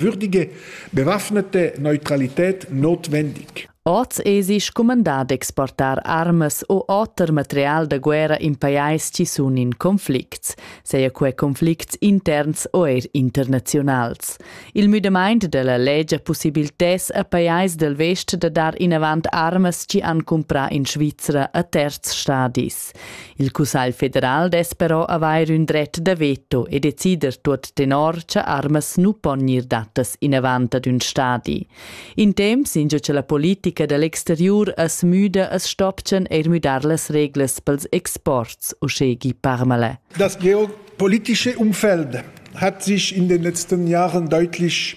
würdige, bewaffnete Neutralität notwendig. Oz esi scumandà d'exportar armas o oter material da guerra in pajais ci sun in conflicts, seia quai conflicts interns o eir internaziunals. Il müdamaint della legge possibiltess a pajais del vest da dar inavant armas ci han cumprà in Svizra a terz stadis. Il Cussagl federal dess però avair ün dret da veto e decider tuot tenor cha armas nu pon gnir dattas inavant ad ün stadi. In temps ingio cha la politica da l'exteriur as müda as stopchan eir müdar las reglas pels exports, uschè Guy Parmelin. Das geopolitische Umfeld hat sich in den letzten Jahren deutlich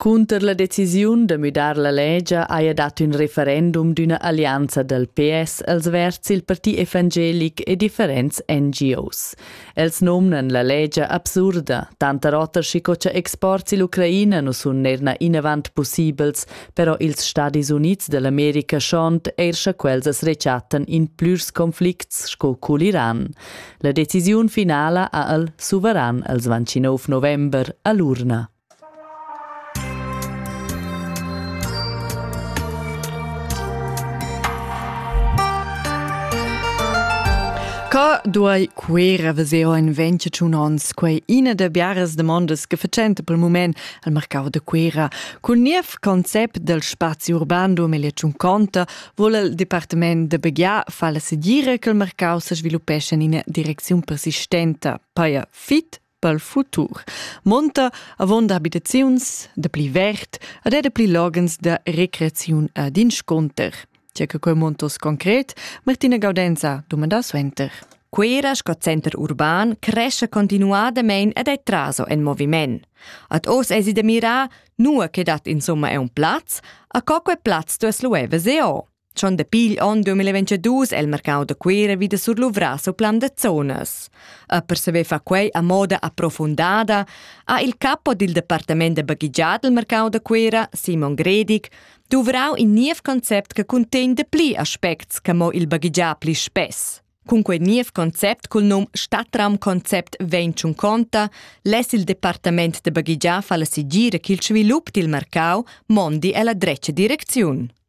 Cunter la decisiun da müdar la legia haja dat ün referendum d'üna allianza dal PS als verds il parti evangelic e differents NGOs. Els nomnan la legia absurda, tanter oter schico cha exports ill'Ucraina nu sun neir inavant pussibels, però ils Stadis Units da l'America schont eir scha quels as rechattan in plürs conflicts sco cul Iran. La decisiun finala ha el suveran als 29 november a l'urna. Ca duai Cuera veser in venti tschun ons quei ina da biaras demondas che facenta pel mument al marcau da Cuera. Cul niev concept del spazi urban 2050 vuol il departament de Begià far la segira che il marcau se sviluppesce in ina direcziun persistenta, paia fit pel futur. Monta avon da abitaziuns da pli vert ad era pli logens da recreaziun ad insconter. Tja che quei montos concret, Martina Gaudenza domanda suenter. Quera sco center urban cresce continuadamein ed è traso en moviment. Ad os esi de mira, nua che dat insomma è un plaz, a co quei plaz tu es lueve se o. Schon dapi igl onn 2022 è il mercau da Cuira vida surluvras o plan da zonas. E per saver far quei a moda approfundada, ha il capo dil departament da baghigiat del mercau da Cuira, Simon Gredig, duvrau in niev concept che contegn de pli aspects che mo il baghigiat pli spess. Cun quei niev concept cul num Stadtraumkonzept vegn tschun conta, less il departament de baghigiat far la sigira ch'il svilup dil mercau mondi ella dretga direcziun.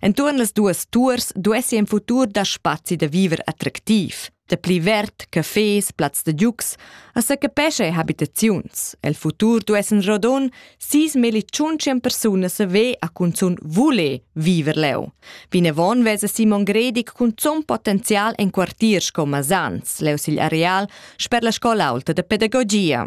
Entuorn las duas tuors duessi in futur da spazi da viver attractiv, da pli verd, cafés, plazs da giugs, a secapescha habitaziuns. El futur duessen rodon sis meli tschuncien persunas a ve a cunzun vule viver leu. Vinavon vesa Simon Gredig cunzun potenzial en quartiers sco Masans, leu sigl areal, sper la scola aulta da pedagogia.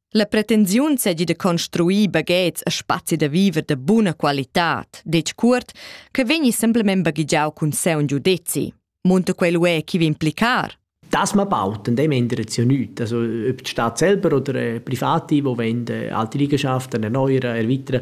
La pretensiun seigi da construir baghets e spazi da viver de buna qualitad, detg cuort, che vegni semplamein baghegiau cun seun giudezi. Munta quel uè chi vi implicar? Das man baut, in dem ändert es ja nichts. Also ob die Stadt selber oder äh, Private, die wollen, äh, alte Liegenschaften erneuern, erweitern,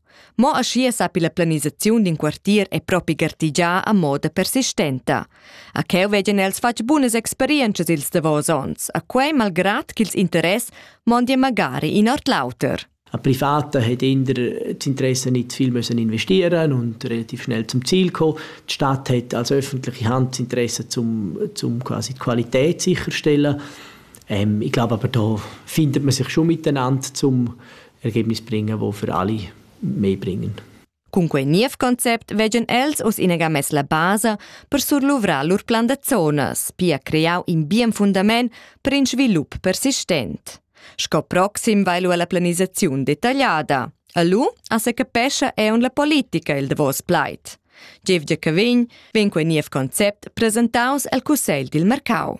Mo aschia sappi la planisaziun d'in quartier e propi gartigiar a moda persistenta. A cheu vegien els fatg bunas experientschas ils davos onns, a quei malgrad ch'ils interess mondien magari in ord l'auter. A Privata hat eher das Interesse nicht viel müssen investieren und relativ schnell zum Ziel gekommen. Die Stadt hat als öffentliche Hand das Interesse zum, zum quasi die Qualität sicherstellen. Ähm, ich glaube aber, da findet man sich schon miteinander, um e che mi springa vo für alle mei bringen. Cun quei niev concept veggan els oz inega mess la basa per surluvrar lur plan da zonas, pia creau in bien fundament per in svilup persistent. Sco proxim vai lu alla planisaziun detagliada. A lu a se capescha eun la politica il davos plaid. Jeff Giacovin vegn quei niev concept presentaus el Cussegl dil mercau.